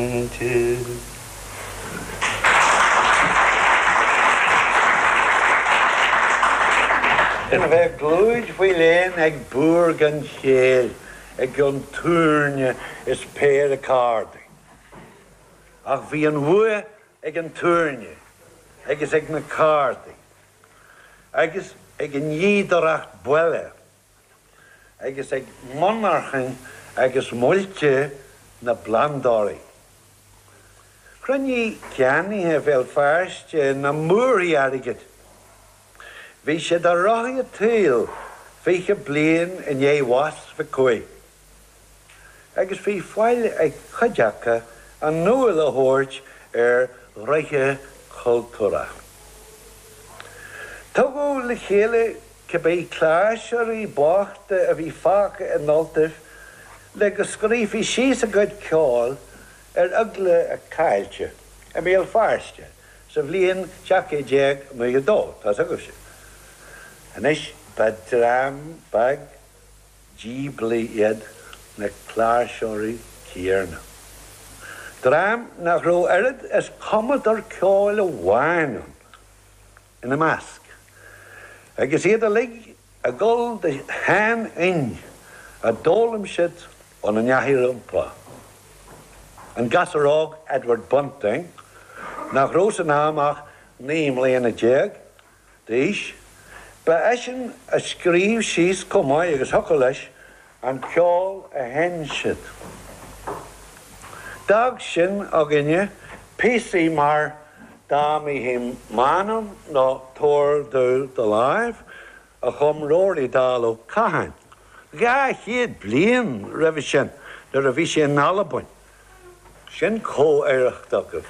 Aontais. Ná bheith i gclúid faoi léan ag búr gan chéill i gcionn túirne is péire cárdaí. Ach bhí an bhua ag an túirne agus ag na cárdaí agus ag an fhíodóireacht baile agus ag monarchain agus muilte na bplandálaí. Chruinnigh ceannaithe Bhéal Feirste na múrthaí airgid. Bhí siad ar rothaí an tsaoil fiche bliain i ndiaidh bhás Mhic Cumhaigh. agus bhí faill ag cuid acu a n-iúl a thabhairt ar ghnoithe cultúrtha. Tugadh le chéile cibé cláirseoirí bochta a bhí fágtha in Ultaibh le go scríofaí síos a gcuid ceoil ar eagla a caillte i mBéal Feirste sa bhliain 1792. Tá's agaibhse anois, ba dhream beag. díblí iad na cláirseoirí céanna, dream nach raibh oiread is cumadóir ceoil amháin ann ina measc, agus iad uilig ag dul de sheanfhoinn a d'fhoghlaim siad óna n-aithreacha rompu, an gasúr óg Edward Bunting nach raibh san am ach naoi mbliana déag, d'aois. Ba eisean a scríobh síos chomh maith agus thiocfadh leis an ceol a sheinn siad. D'fhág sin againne píosaí mar Da Mihi Manum nó Tabhair Domh Do Láimh a chum Ruairí Dall Ó Catháin dhá chéad bliain roimhe sin nuair a bhí sé in Albain. Sin comh-oidhreacht agaibh.